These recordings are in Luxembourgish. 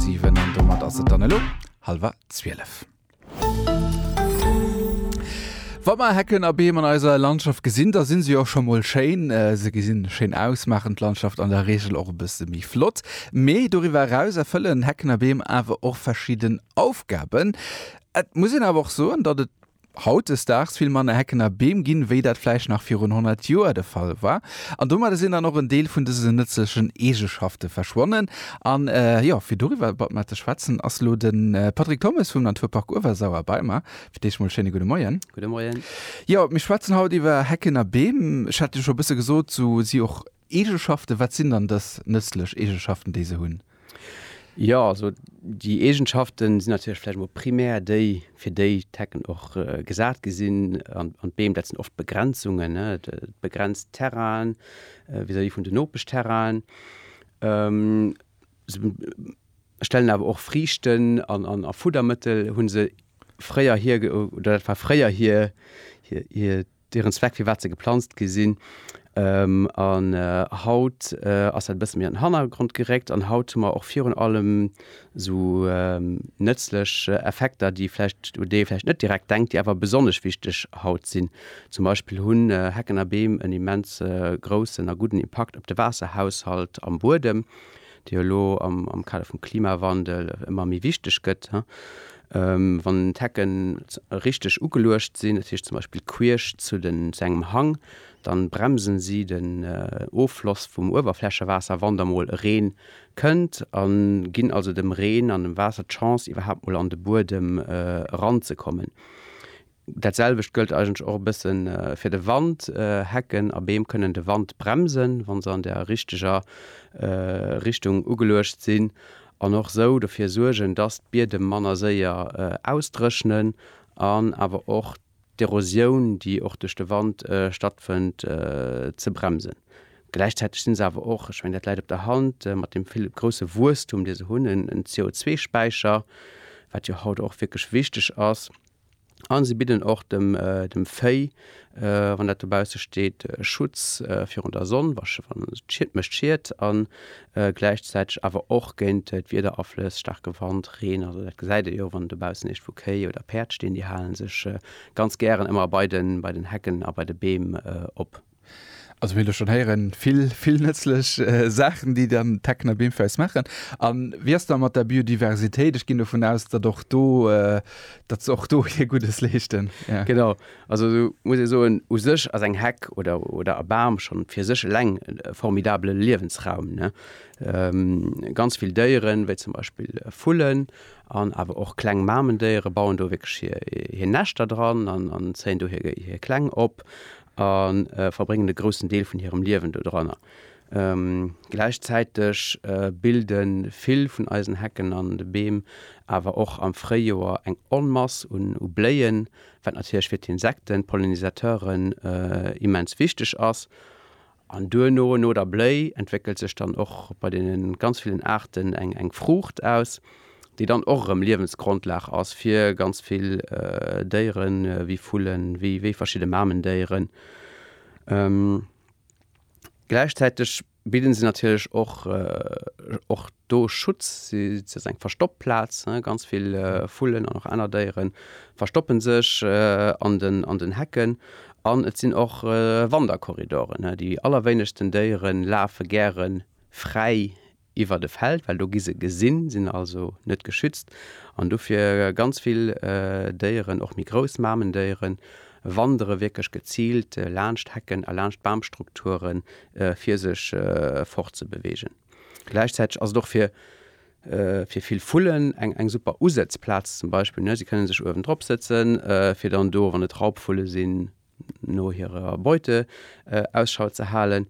7 an domat ass et dann elo halwer 12. Wa mer Hecken a Beem an eiser Landschaft gesinn, da sinn se jo scho mol schéin. Se gesinn schéin aus, maachen d'Landschaft an der Reegel och e bësse méi flott. Mee doriwwer eraus erfëllen Hecken a Beem awer och verschidden Aufgaben. Et muss een awer och soen, datt et, hautdesdaags vill manner Hecken a Beem ginn, wéi dat vläicht nach virun 100 Joer de Fall war. An domadder sinn dann och en Deel vun dësen nëtzlechen Eegeschafte verschwonnen. An jo, fir doriwwer e Bad mat ze schwätzen, ass elo de Patrick Thommes vum Naturpark Uewersauer bei mer. Fir d'éischt emol schéine gudde Moien. Gudde Moien. Jo, mir schwätzen haut iwwer Hecken a Beem. Ech hat jo scho e bësse gesot, esou si och Eegenschaften, wat sinn dann dës nëtzlech Eegenschaften, déi se hunn? Jo, also déi Eegenschaften sinn natierlech vläicht emol primär déi, fir déi d'Hecken och gesat gi sinn. An d'Beem, dat sinn oft Begrenzungen, ne, et begrenzt d'Terrainen vis-à-vis vun den Nopeschterrainen. Se stellen awer och Friichten a Fuddermëttel hu se fréierhir, oder dat war fréier hir, Deren Zweck firwat se geplanzt gi sinn. An haut ass dat e bësse méi an den Hannergrond geréckt an haut hu mer och virun allem esou nëtzlech Effekter, déi vläicht, u déi ee vläicht net direkt denkt, déi awer besonnesch wichteg haut sinn. Zum Beispill hunn Hecken a Beem en immens groussen a gudden Impakt op de Waasserhaushalt am Buedem. déi jo elo am Kader vum Klimawandel ëmmer méi wichteg gëtt, wann d'Hecke richteg ugeluecht sinn, dat heescht zum Beispill queesch zu engem Hang, da bremsen si den Offloss vum Uewerflächewaasser, wann da mol e Reen kënnt, a ginn also dem Reen an dem Waasser d'Chance iwwerhaapt mol an de Buedem eranzekommen. Dat selwecht gëllt eigentlech och e bësse fir de Wand. Hecken a Beem kënnen de Wand bremsen, wa se an der richteger Richtung ugeluecht sinn, an och esou dofir suergen, dass d'Biedem manner séier ausdréchnen an awer och d'Erosioun, déi och duerch de Wand stattfënnt, ze bremsen. Gläichzäiteg si se awer och, ech mengen, dat läit op der Hand, mat deem vill grousse Wuesstum, dee se hunn, en CO2-Späicher, wat jo haut och wierklech wichteg ass. A si bidden och dem dem Véi, wann dat dobausse steet, Schutz virun der Sonn, wa wann d'Schied mécht Schied, a gläichzäiteg awer och géint d'Wiederaflëss, staarke Wand, Reen. Also dat gesäit ee jo, wann dobaussen iergendwou Kéi oder Päerd stinn, déi hale sech ganz gären ëmmer bei den bei den Hecken a bei de Beem op. Also mir hunn elo schonn héieren, vill, vill nëtzlech Saachen, déi dann d'Tecna Bim fir eis maachen. A wéi ass da mat der Biodiversitéit? Ech ginn dovun aus, datt och do, datt se och do hir Guddes leeschten, ja. Genau. Also do muss ee soen, u sech ass eng Heck oder, oder e Bam schonn fir sech eleng e formidabele Liewensraum, ne. Ganz vill Déieren, wéi zum Beispill Vullen an awer och kleng Mamendéiere bauen do wierklech hir, hir Näschter dran an, an zéien do hir, hir Kleng op. a verbréngen e groussen Deel vun hirem Liewen doranner. Gläichzäiteg bilde vill vun eisen Hecken an de Beem awer och am Fréijoer eng Onmass u Bléien, wat natierlech fir d'Insekten, d'Pollinisateuren, immens wichteg ass. An duerno, no der Bléi, entwéckelt sech dann och bei deene ganz villen Aarten eng Fruucht aus, déi dann och erëm Liewensgrondlag ass fir ganz vill Déiere wéi Vullen, wéi verschidde Mamendéieren. Gläichzäiteg bidden se natierlech och do Schutz, si ass eng Verstoppplaz, ganz vill Vullen an och aner Déieren verstoppen sech an den an den Hecken an et sinn och Wanderkorridoren. Déi allerwéinegsten Déiere lafe gären fräi iwwert e Feld, well do gi se gesinn, sinn also net geschützt an dofir ganz vill Déieren, och méi grouss Mamendéieren, wandere wierklech geziilt laanscht Hecken a laanscht Bamstrukture fir sech fortzebeweegen. Gläichzäiteg ass et och fir fir vill Vullen eng eng super Usëtzplaz zum Beispill, ne? Si kënne sech uewen drop sëtzen, fir dann do, wann et Raubvulle sinn, no hirer Beute Ausschau ze halen.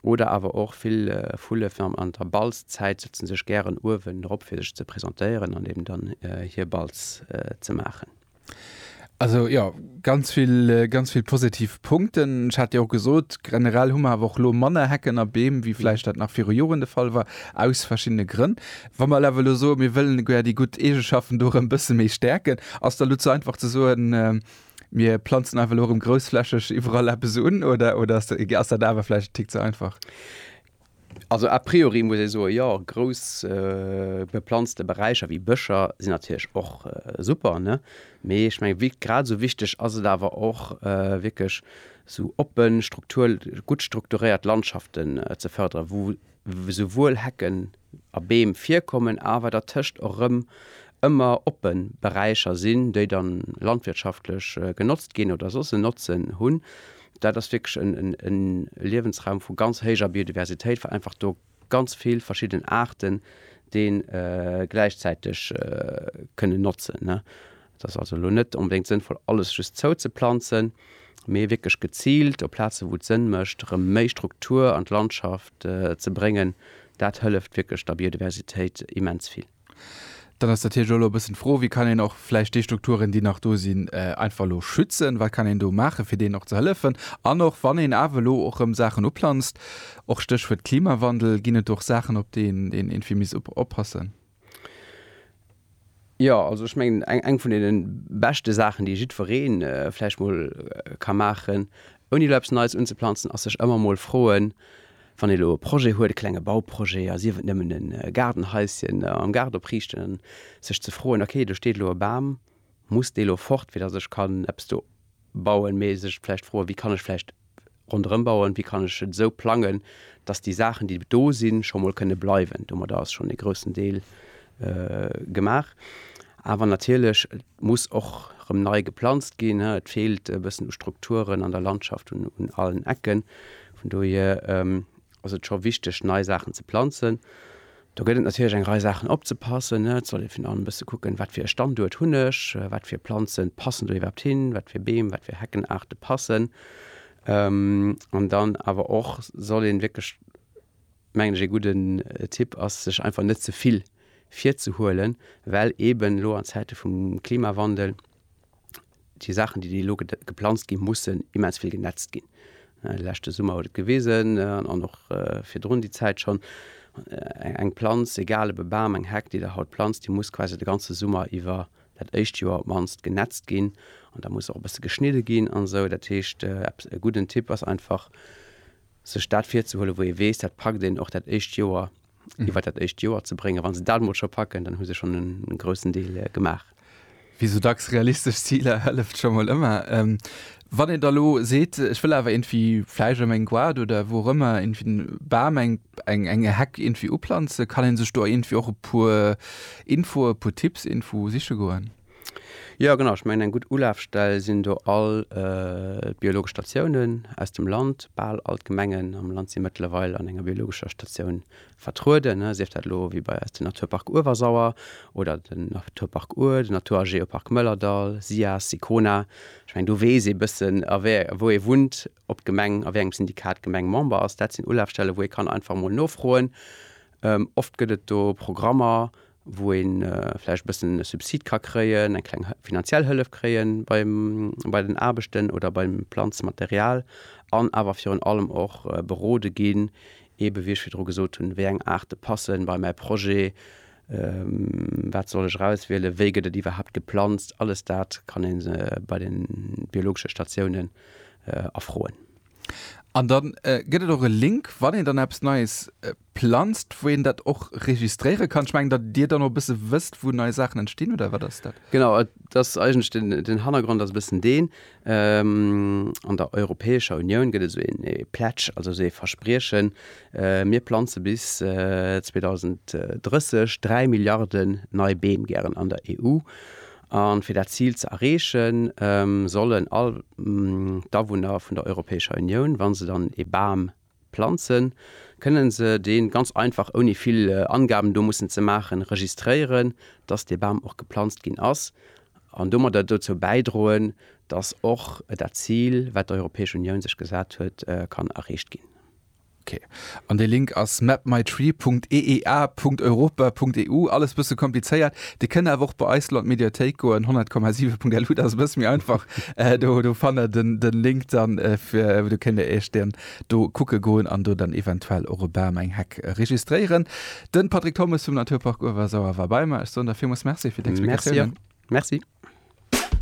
Oder awer och vill Vulle fir an der Balzzäit sëtze sech gären uewen drop, fir sech ze presentéieren an eben dann hir Balz ze maachen. Also jo, ganz vill, ganz vill positiv Punkten. Ech hat jo och gesot, generell hu mer awer och elo manner Hecken a Beem, wéi vläicht dat nach viru Joren de Fall war, aus verschiddene Grënn. Wa mer awer elo soen, mir wëllen gär déi gutt Eegeschaften do erëm e bësse méi stäerken, ass dann elo ze einfach ze soen, mir planzen einfach elo erëm groussflächeg iwwerall eppes un oder ass dat awer vläicht e Tick ze einfach? Also a priori muss ee soen, jo, grouss beplanzte Beräicher wéi Bëscher sinn natierlech och super, ne? Mee ech mengen, wéi grad esou wichteg ass et awer och, wierklech esou oppen, struktur-, gutt strukturéiert Landschaften ze fërderen, wou esouwuel Hecken a Beem virkommen, awer dertëscht och erëm ëmmer oppe Beräicher sinn, déi dann landwirtschaftlech genotzt ginn oder soss en Notzen hunn. Dat ass wierklech e Liewensraum vu ganz héijer Biodiversitéit, well einfach do ganz vill verschidden Aarten dee gläichzäiteg kënnen notzen. Et ass also elo net onbedéngt sënnvoll alles just zouzeplanzen, mee wierklech geziilt op Plaze wou et Sënn mécht erëm méi Struktur an d'Landschaft ze bréngen. Dat hëlleft wierklech der Biodiversitéit immens vill. Dann ass natierlech och elo e bëssen d'Fro, wéi kann een och vläicht déi Strukturen, déi nach do sinn, einfach elo schützen? Wat kann een do maachen, fir deenen och ze hëllefen? An och wann een awer elo och erëm Saachen uplanzt, och Stéchwuert Klimawandel, ginn et do och Saachen, op déi een eventuell misst oppassen? Jo, also ech mengen, eng eng vun deene beschte Saachen, déi jiddweree vläicht mol ka maachen, ouni elo eppes Neies unzeplanzen, ass sech ëmmer emol froen, Wann ee lo e Projet huet, e klenge Bauprojet, a sief et nëmmen e Gaardenhaisschen am Gaart opriichten, an sech ze froen, ok, do steet lo e Bam, muss dee lo fort, fir datt ech kann eppes do bauen? Mee sech vläicht froen, wéi kann ech vläicht ronderëm bauen, wéi kann ech et esou plangen, datt déi Saachen, déi do sinn, scho mol kënne bleiwen. Domadder ass schonn e groussen Deel gemaach. Awer natierlech, et muss och rëm nei geplanzt ginn. Et feelt e bëssen u Strukturen an der Landschaft un allen Ecken. Vun dohier ass et scho wichteg, nei Saachen ze planzen. Do gëtt et natierlech eng Rei Saachen opzepassen. Et sollt ee virun allem e bësse kucken, wat fir e Standuert hunn ech, wat fir Planze passen do iwwerhaapt hin, wat fir Beem, wat fir Heckenaarte passen. An dann awer och soll ee wierklech, mengen ech, ee gudden Tipp ass, sech einfach net ze vill virzehuelen, well eeben elo an Zäite vum Klimawandel, déi Saachen, déi déi elo geplanzt ginn, mussen immens vill genetzt ginn. Lächte Summer huet et gewisen an och virdrun déi Zäit schonn, eng Planz, egal ob e Bam, eng Heck, déi Der haut planzt, déi muss quasi de ganze Summer iwwer, dat éischt Joer op d'mannst, genetzt ginn an da muss och e bësse geschnidde ginn an esou. Dat heescht, eppes, e gudden Tipp ass einfach, sech dat virzehuelen, wou ee weess, dat packt een och dat éischt Joer iwwert dat éischt Joer ze bréngen. Wa se dat mol scho packen, dann hu se schonn e groussen Deel gemaach. Wéi esou dacks, realistesch Ziler hëlleft scho mol ëmmer. Wann een da elo seet, ech wëll awer iergendwéi vläicht ëm eng Goart oder wou och ëmmer iergendwéi en Bam, eng eng Heck iergendwéi uplanzen, kann ee sech do iergendwéi och e puer Infoe, e puer Tipps iergendwou siche goen? Jo genau, ech mengen eng gutt Ulafstell sinn do all biologesch Statiounen aus dem Land. Bal all d'Gemengen am Land si mëttlerweil an enger biologescher Statioun vertrueden, ne. Sief dat elo wéi bei eis den Naturpark Uewersauer oder den Naturpark Our, den Natur a Geopark Mëllerdall, SIAS, Sicona. Ech mengen do weess ee bëssen a wéi, wou ee wunnt, ob d'Gemeng, a wéi engem Syndikat d'Gemeng Member ass. Dat sinn Ulafstelle wou ee kann einfach emol nofroen. Oft gëtt et do Programmer wou ee vläicht e bëssen e Subsid ka kréien, eng kleng finanziell Hëllef kréie beim, bei den Aarbechten oder beim Planzmaterial an awer virun allem och berode ginn, eebe wéi ech virdru gesot hunn, wéi eng Aarte passe bei mäi Projet, wat soll ech erauswielen, wéi gëtt et iwwerhaapt geplanzt. Alles dat kann ee bei de biologesche Statiounen erfroen. An dann gëtt et och e Link, wann een dann eppes Neies planzt, wou een dat och registréiere kann. Ech mengen, datt Dir dann och e bësse wësst, wou nei Saachen entstinn, oder wat ass dat? Genau, et ass eigentlech den, den Hannergrond ass e bëssen deen, an der Europäescher Unioun gëtt et esou een ee Pledge, also esou ee Verspriechen, mir planze bis 2030 dräi Milliarden nei Beem gären an der EU. A fir dat Zil ze erreechen, sollen all d'Awunner vun der Europäescher Unioun, wa se dann ee Bam planzen, kënne se dee ganz einfach, ouni vill Angaben do mussen ze maachen, registréieren, dass dee Bam och geplanzt ginn ass, an domadder dozou bäidroen, dass och dat Zil, wat d'Europäesch Unioun sech gesat huet, kann erreecht ginn. Ok, an dee Link ass mapmytree.eea.europa.eu. Alles bësse komplizéiert. Dir kënnt awer och bei eis lo an d'Mediathéik goen, 100,7.lu, dat ass e bësse méi einfach. Do, do fannt der den, den Link dann fir, do kënnt dir iech den do kucke goen an do dann eventuell och e Bam, eng Heck registréieren. Den Patrick Thommes vum Naturpark Uewersauer war bei mer. Ech soen der villmools Merci fir d'Explikatiounen. Merci. Merci.